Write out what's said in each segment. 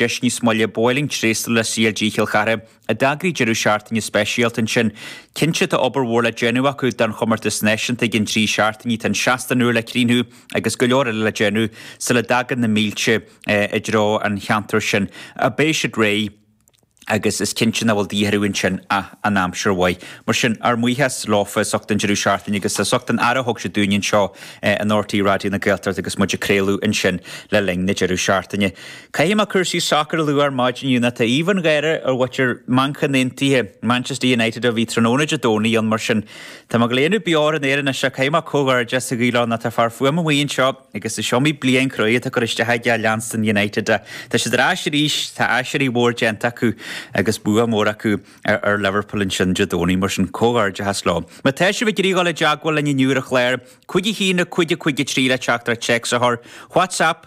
Deis níos moille, Ba mhaith liom tréaslú le CLG Chill Chartha, a d'eagraigh deireadh seachtaine speisialta ansin. Cinnte tá obair mhór le déanamh acu don chomórtas náisiúnta i gcionn trí seachtainí, tá an seastán úr le críochnú agus go leor eile le déanamh sula dtagann na mílte i dtreo an cheantair sin. Beidh siad réidh agus is cinnte nach bhfuil de dhíth orthu ansin ach an aimsir mhaith. Mar sin, ár mbuíochas leofa as ucht an deireadh seachtaine agus as ucht an aire a thug siad dúinn anseo in RTÉ Raidió na Gaeltachta agus muid ag craoladh ansin le linn na deireadh seachtaine. Caithfidh mé cúrsaí sacair a lua ar maidin inniu ná tá aoibh an gháire ar mhuintir Manchain Aontaithe, Manchester United, ó bhí tráthnóna Dé Domhnaigh ann mar sin tá mé ag líonadh beoir in Éirinn as seo. Caithfidh mé comhghairdeas a ghabháil ann ná tá fear fuaime amuigh anseo agus is iomaí bliain chruaidh atá curtha isteach aige ag leanstan United. Tá siad ar ais arís, tá aiséirí mhór déanta acu agus bua mór acu ar Liverpool ansin Dé Domhnaigh mar sin comhghairdeachas leo. Má tá sibh ag iarraidh dul i dteagmháil linn inniu ar an chlár, Cúig a haon nó cúig a 53 le teachtaireacht téacs a chur, WhatsApp,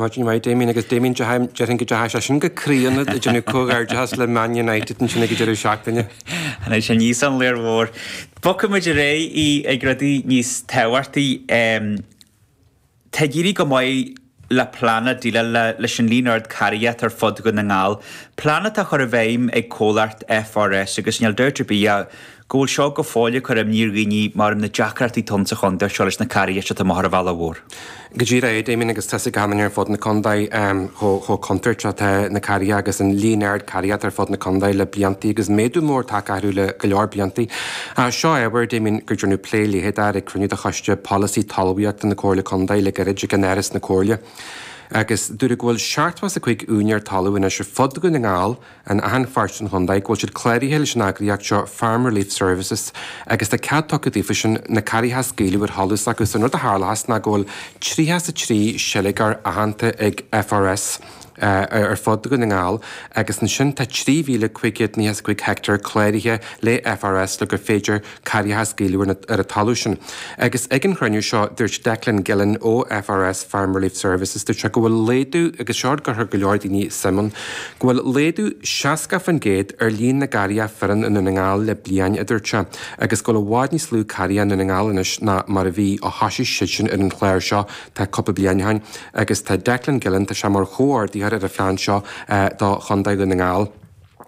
Maidin mhaith, Damien agus Damien, Déarfainn, déarfainn go dteachaigh sé sin go croí ionat, ag déanamh comhghairdeachas le Man United ansin ag an deireadh seachtaine. An é sin Yii Sun, Léar Mhór? Bogfaidh muid ar aghaidh chuig rudaí níos tábhachtaí. Tá ag éirí go maith le plean ag déileáil leis an líon ard carria atá ar fud Dhún na nGall, plean atá á chur i bhfeidhm ag comhlacht FRS agus níl dabht ar bith ach go bhfuil seo go fóill ag cur imní ar dhaoine mar na deacrachtaí atá ann sa chontae seo leis na carria atá amuigh thar an bhealach mhór. Go díreach é, Damien, agus tá's ag achan nduine ar fud na contae chomh contúirteach is atá na carria agus an líon ard carria atá ar fud na contae le blianta agus méadú mór tagtha orthu le go leor blianta. Seo ábhar, Damien, go ndearnadh plé leitheadach air ag cruinniú de choiste polasaí talmhaíochta na comhairle contae le gairid in Áras na Comhairle agus dúradh go bhfuil 75 úinéir talún anois ar fud Dhún na nGall In achan pháirt den chontae go bhfuil siad cláraithe leis an eagraíocht seo Farm Relief Services agus tá cead tugtha daofa sin na carria a scaoileadh ar sholas agus an rud a tharlóchas ná go bhfuil 33 seilgeoir aitheanta ag FRS ar fud Dhún na nGall agus ansin tá 3,595 heicteár cláraithe le FRS le gur féidir carria a scaoileadh ar an talamh sin? Agus ag an chruinniú seo, dúirt Declan Gillen ó FRS, Farm Relief Services, dúirt sé go bhfuil laghdú, agus seo rud a gcuirfeadh go leor daoine suim ann, go bhfuil laghdú 60% ar líon na gcarria fireann i nDún na nGall le bliain, a dúirt sé, agus go bhfuil i bhfad níos lú carria i nDún na nGall anois ná mar a bhí ó thosaigh siadsan ar an chlár seo tá cúpla bliain ó shin. Agus tá Declan Gillen, tá sé mar chomhordaitheoir ar an phlean seo do chontae Dhún na nGall.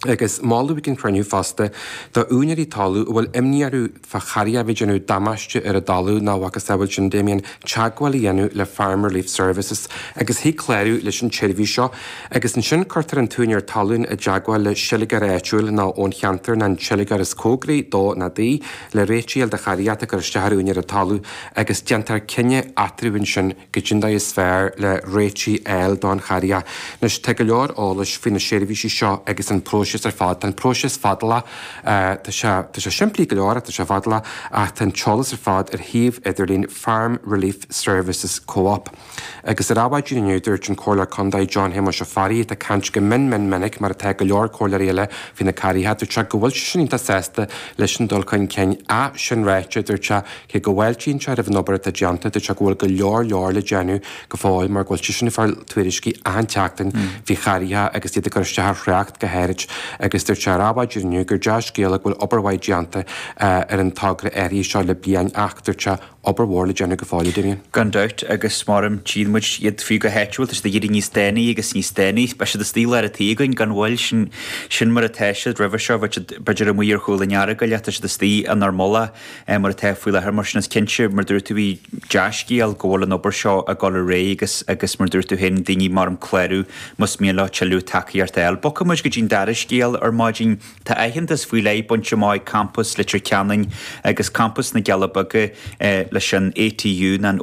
agus moladh ag an chruinniú fosta do úinéirí talamh a bhfuil imní orthu fá charria a bheith ag déanamh damáiste ar a dtalamh ná a mhacasamhail sin Damien teagmháil a dhéanamh le Farm Relief Services agus thig clárú leis an tseirbhís seo agus ansin cuirtear an t-úinéir talún i dteagmháil le seilgeoir áitiúil nó ón cheantar ná an seilgeoir is cóngaraí dó ná di le réiteach a fháil de charria atá ag cur isteach ar úinéir an talamh agus déantar cinneadh eatarthu ansin cad é an dóigh is fearr le réiteach a fháil don charria. Anois, tá go leor eolais faoi na seirbhísí seo agus an próiseas ar fad. Tá an próiseas fadálach, tá sé, tá sé simplí go leor ach tá sé fadálach ach tá an t-eolas ar fad ar shuíomh idirlín Farm Relief Services Co-op. Agus ar Adhmhaidin inniu, dúirt an Comhairleoir Contae John Shéamais Ó Fearraigh, atá ag caint go mion mion minic mar atá go leor comhairleoirí eile faoi na cairríthe, dúirt sé go bhfuil seisean iontach sásta leis an dul chun cinn. Ach sin ráite, dúirt sé, Cé go bhfáiltíonn sé roimh an obair atá déanta, dúirt sé go bhfuil go leor leor le déanamh go fóill mar go bhfuil seisean ag fáil tuairiscí achan tseachtain faoi chairríthe agus iad ag cur isteach ar thrácht go háirid agus dúirt sé ar Adhmhaidin inniu gur dea-scéala go bhfuil obair mhaith déanta ar an togra áirithe seo le bliain ach, dúirt sé, obair mhór le déanamh go fóill, a Damien. Gan dabht agus mar a tchíonn muid iad fiú go háitiúil tá siad ag éirí níos dána agus níos dána. Beidh siad istigh i lár an tí againn gan mhoill, sin mar atá siad. Roimhe seo bheadh siad b'fhéidir amuigh ar chúl an Earagail, tá siad istigh inár mbaile. mar atá faoi láthair. Mar sin is cinnte, mar a dúirt tú, bhí dea-scéal go bhfuil an obair seo ag dul ar aghaidh agus, agus mar a dúirt tú féin, daoine mar an clárú más mian leo tuilleadh tacaíocht a fháil. Bogfaidh muid go dtí an dara scéal ar maidin. Tá aitheantas faoi leith bainte amach ag campas Leitir Ceanainn agus campas na gCealla Beaga leis an ATU, nó an.